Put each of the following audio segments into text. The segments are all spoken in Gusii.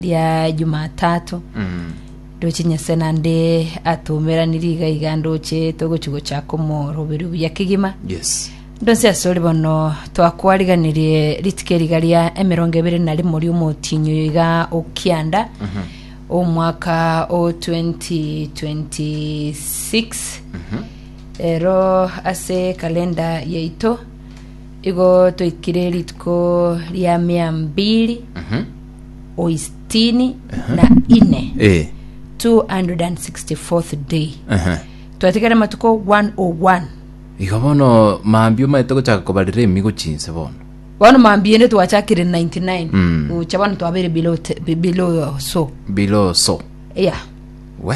ria Jumatatu ndoche Nyasae nande atomeranirie iga iga ndoche togochi gochaka omoroberio buya kegima Yes. ndonsi asore bono twakwariganirie rituko eriga ria emerongo ebere na rimo riomotinyi oyo iga okianda omwaka o 2026 ero ase kalenda yaito igo toikire rituko ria mia mbiri o isitini na ine Eh. 264th day Aha. twatigare matuko 101 Igo bono mambia omanyete gochaka kobarera emigo chinse bono. bono mambiende twachakire 99 Mm. gocha bono twabeire below te- be- below so Below so. yeah We.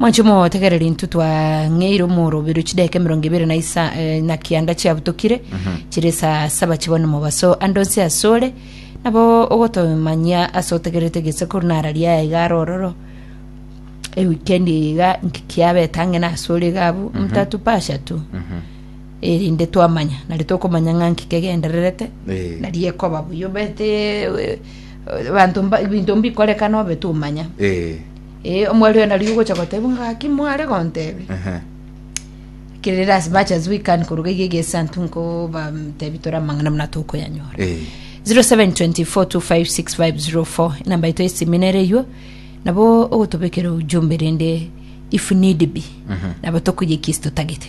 Mwanche motegereri intwe twang'eire omorobero chideka emerongo ebere na isa eh, na kianda chiabutokire chire esaa saba chibone mobaso ande onsi asore nabo ogotomanyia ase otegerete gese koru nara riaye iga are ororo ewikendi iga nkikiabeta ang'e nasore iga abu mtatu pasha tu erinde twamanya nari tokomanya ng'a nkikegendererete Eh. nari ekoba buya obete eh, eh, banto mba- binto mbikorekana obe tumanya Eh. Eh, omwari oyo nari ogocha goteba ng'a gaki mware gontebe. Ehe. Kerere as much as we can koruga iga egesantu nkoba tebi tore amang'ana muna tokoyanyora. Eh. 0724256504 enamba yaito esimi nere eywo nabo ogotobekera ujumbe rende if need be nabo tokoyia ekesi totagete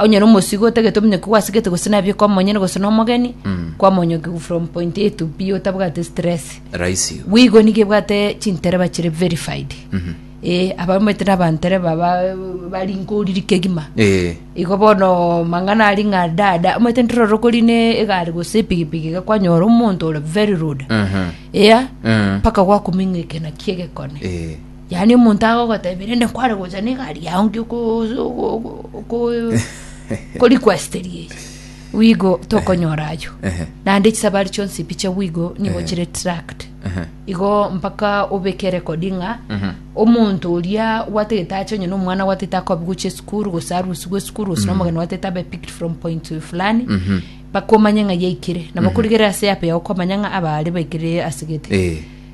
onye na omosigo otagete omenye ko gwasigete gose nabio kwa monyene gose na omogeni kwamonyoki from point a to b otabwate stress Rahisi. igo. bwigo nigo ebwate chintereba chire verified eh abamete nabantereba ba barinko oriri kegima Eh, igo bono mang'ana ari ng'a dada omanyete ntororo kori ne egari gose epigipigi iga kwanyora omonto ore very rude mhm, eya mm, mpaka gwakuming'ikana kiegekone eh, Yaani omonto agogotebia rende nkware gocha negari yao nki okoriquesteria eye, bwigo tokonyora ayio. Ehe. Naende chisabari chionsi mbiche bwigo nigo Ehe. chire tracked. Ehe. Igo mpaka obeke record ng'a Mhm. omonto oria gwatagete ache onye na omwana gwatagete akobi gochia esukuru gose arusigwe esukuru gose na omogeni gwatagete abe picked from point to fulani Mhm. mpaka omanye ng'a yaikire nabo korigereria ase yape yao okomanya ng'a aba aria baikire ase gete Eh.